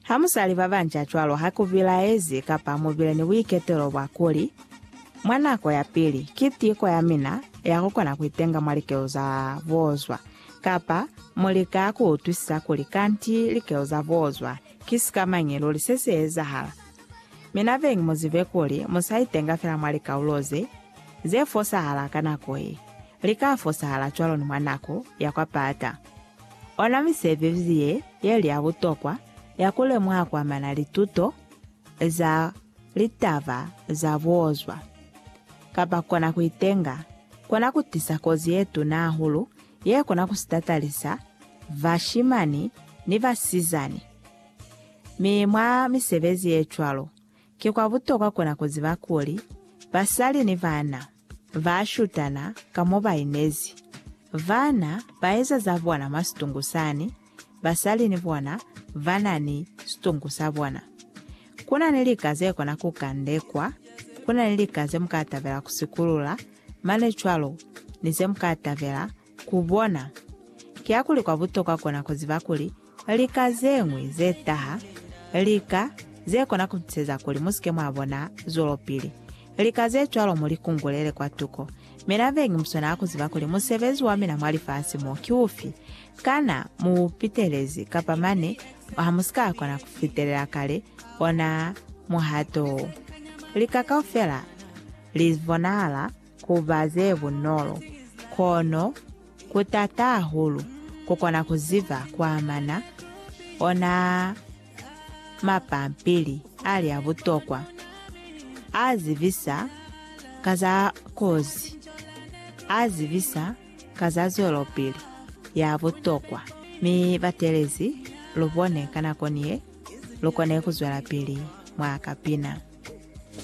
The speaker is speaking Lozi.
Ha mu sa li ba banca cwalo ha ku bilaezi kapa mu bile ni buiketelo bwa kuli, Mwa nako ya pili, ki tiko ya mina ya ku kona ku itenga mwa likelo za boozwa, kapa mu lika ku utwisisa kuli kanti likelo za boozwa ki sikamañi luli se si ezahala. Mi na beñi mu zibe kuli mu sa itenga fela mwa likaulo ze, ze fosahala ka nako ye, li ka fosahala cwalo ni mwa nako ya kwa pata. Ona misebezi ye yeli ya butokwa ya ku lemuha ku amana lituto za litaba za buozwa, kapa kona ku itenga, kona ku tisa kozi ye tuna hahulu ye kona ku sitatalisa bashimani ni basizani. Mi mwa misebezi ye cwalo, ki kwa butokwa kona ku ziba kuli basali ni bana, Ba shutana ka mo ba inezi. Vana ba eza za bona mwa situngu sani, basali ni bona ba na ni situngu sa bona. Ku na ni lika ze kona ku kandekwa, ku na ni lika ze mu ka tabela ku sikulula, mane cwalo ni ze mu ka tabela ku bona. Kiakuli kwa butokwa kona ku ziba kuli Lika zeñwi ze taha, lika ze kona ku tuseza kuli mu si ke mwa bona zwelopili. Lika ze cwalo mu li kungulele kwatuko. Mina vengi mu swanela ku ziba kuli musebezi wa mina mwa lifasi mo ki ufi. Kana mu u pitelezi kapa mane ha mu si ka kona ku fitelela kale ona muhato wo? Lika kaufela li bonahala. ku ba ze bunolo, kono ku taata hahulu ku kona ku ziba ku amana ona mapampili ali a butokwa a zibisa ka za kozi, a zibisa ka za zwelopili ya butokwa, mi batelezi lu bone ka nako ni ye lu kone ku zwelapili mwa kapina.